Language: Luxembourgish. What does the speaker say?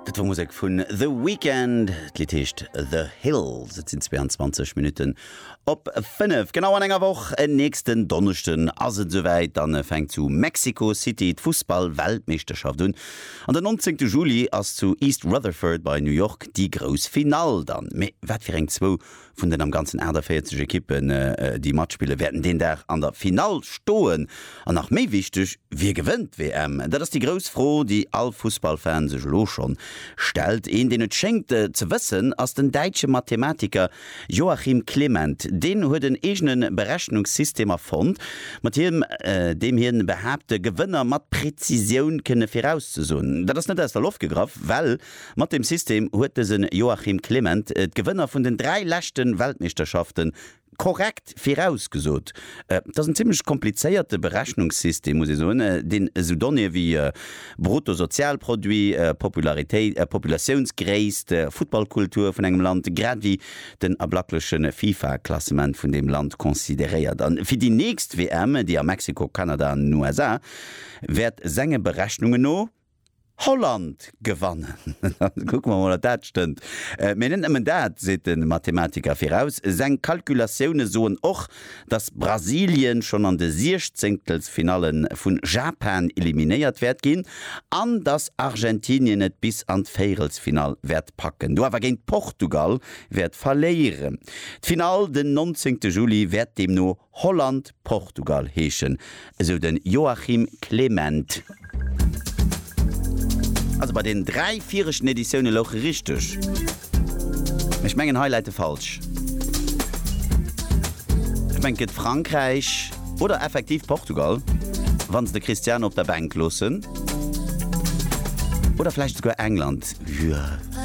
Dat war Musek vun The Weeknd. D'Lidd heescht The Hills. Et sinn 22 Minutten op 5. Genau an enger Woch, en nächsten Donneschden, ass et esouwäit. Da fänkt zu Mexico City d'Fussball-Weltmeeschterschaft un. An den 19. Juli ass zu East Rutherford bei New York déi grouss Finall dann. Mee wat fir eng zwou Vun den am Ganzen 48 Ekippen, déi matspillen, wäerten deen Dag an der Finall stoen. An nach méi wichteg, Wie gewënnt d'WM? Dat ass déi grouss Fro, déi all Fussballfan sech elo schonn stellt. Een, deen et schéngt ze wëssen, ass den däitsche Mathematiker Joachim Clement. Deen huet en eegene Berechnungssystem erfonnt, mat him deem hien behaapt, de Gewënner mat Prezisioun kënne virauszesoen. Dat ass net aus der Loft gegraff, well. Mat dem System huet dëse Joachim Clement d'Gewënner vun den dräi leschte Weltmeeschterschafte korrekt virausgesot. Et ass en zimmlech komplizéierte Berechnungssystem, muss ee soen, deen esou Donnéeë wéi Bruttosozialproduit, Popularitéit, Populatiounsgréisst, Futtballkultur vun engem Land, grad ewéi den ablackleche FIFA-Klassement vun deem Land consideréiert. A fir déi nächst WM, déi a Mexiko, Kanada an den USA wäert senge Berechnunge no, Holland gewannen. Kucke mer emol, ob dat stëmmt. Mee net nëmmen dat seet de Mathematiker viraus. Seng Kalkulatioune soen och, datt Brasilien schonn an de Siechzéngtelsfinalle vu Japan eliminéiert wäert ginn an datt Argentinien et bis an d'Véierelsfinall wäert packen, do awer géint Portugal wäert verléieren. D'Finall den 19 Juli wäert deemno Holland, Portugal heeschen, esou de Joachim Clement. Also bei den 3 viregten Editioune louch e richteg, mee ech mengen hei läit e falsch. Ech mengen et gëtt Frankräich oder effektiv Portugal, wann se de Cristiano op der Bänk loossen. Oder vläicht esouguer England.